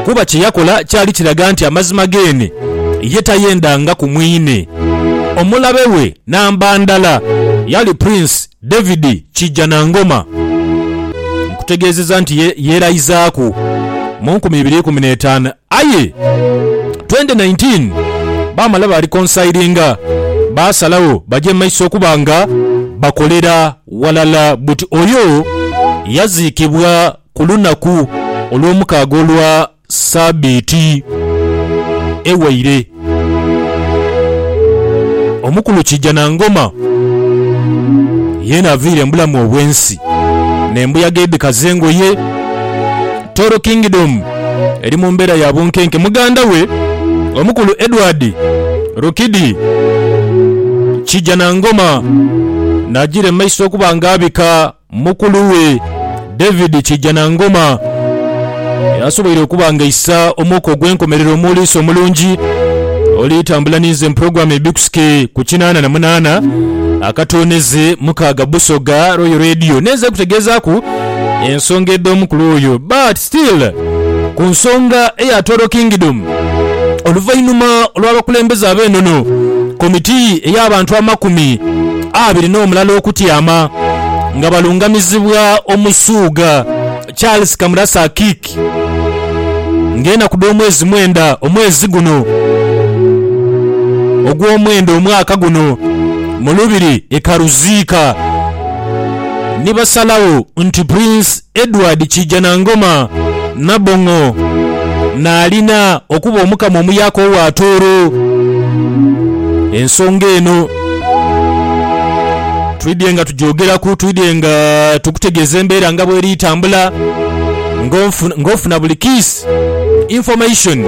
Kuba kye yakola kyali kiraga nti amazima geene ye tayendangaku mwine. Omulabe we namba ndala yali Prince David Kijjanangoma. Nkutegeezezza nti ye yeeraizaaku mu nkumi ibiri ikumi n'etaanu aye twendi naintiini baamala baalikonsayiringa baasalagho baje mu maiso okuba nga bakolera ghalala buti oyo yaziikibwa ku lunaku olwomukaaga olwa Sabiiti ewaire. Omukulu Kijanangoma yeena avaire mubulamu obwensi nembuyaga edhikaza engoye. Toro Kingdom eri mumbeera ya bunkenke. Muganda we omukulu Edward Rukidi Kijanangoma nagira mumaiso okuba nga abika. Mukulu we, David Kijjanangoma, y'asoboire okuba ng'aisa omwoko ogw'enkomerero mu Liiso Omulungi oli tambula ninze mu pulogulaamu Ebikusike ku kinaana na munaana akatooneze mukaaga Busoga Royal Radio. Ninze kutegeezaaku ensonga edh'omukulu oyo but Still ku nsonga eya Toro Kingdom, oluvainhuma olw'abakulembeze ab'enono, komiti ey'abantu amakumi abiri n'omulala okutyama nga balungamizibwa Omusuuga Charles Kamurasa Akik nga enaku dh'omwezi mwenda omwezi guno ogw'omwenda omwaka guno mu lubiri e Karuziika nibasalagho nti Prince Edward Kiijanangoma Nabong'o naalina okuba Omukama omuyaka owa Tooro. Ensonga eno twidhye nga tugyogeraku, twidhye nga tukutegeeza embeera nga bweri etambula ng'ofuna buli kiisi, information,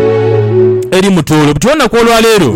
eri mu Tooro. Buti olunaku olwaleero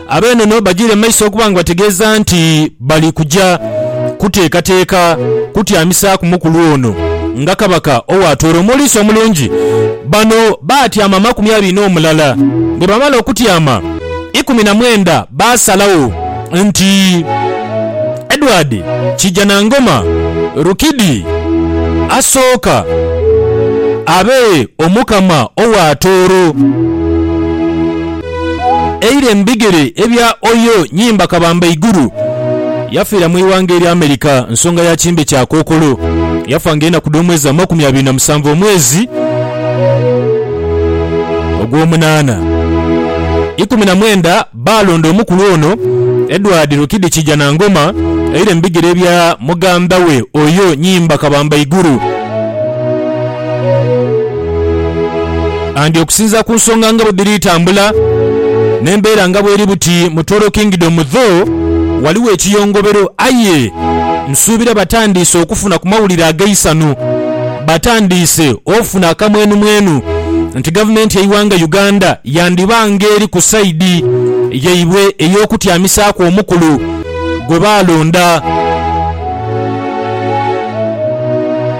Ab'enono bagiire mu maiso okuba nga bategeeza nti bali kuja kuteekateeka kutyamisaaku mukulu ono nga Kabaka owaatoora omuliisa omulungi. Bano baatyama amakumi abiri n'omulala. Bwe baamala okutyama, ikumi na mwenda baasalagho nti Edward Kijanangoma Rukidi asooka abe Omukama owaatooro. Eire mu bigere ebya Oyo Nyimba Kabamba Iguru. Yafiira mu ighanga erya America nsonga ya kimbe kya kookolo. Yafa nga enaku dh'omwezi amakumi abiri na musanvu omwezi ogw'omunaana. Ikumi na mwenda baalonda omukulu ono Edward Rukidi Kijanangoma eire mu bigere ebya mugandha we Oyo Nyimba Kabamba Iguru. And okusinzira ku nsonga nga bwedhiri tambula nembeera nga bweri buti mu Toro Kingdom though waliwo ekiyongobero aye nsuubira batandiise okufuna ku mawulire ageisanhu batandiise ofuna akamwenumwenu nti gavumenti yeighanga Uganda yandiba nga eri ku side yaibwe eyokutyamisaaku omukulu gwebaalonda.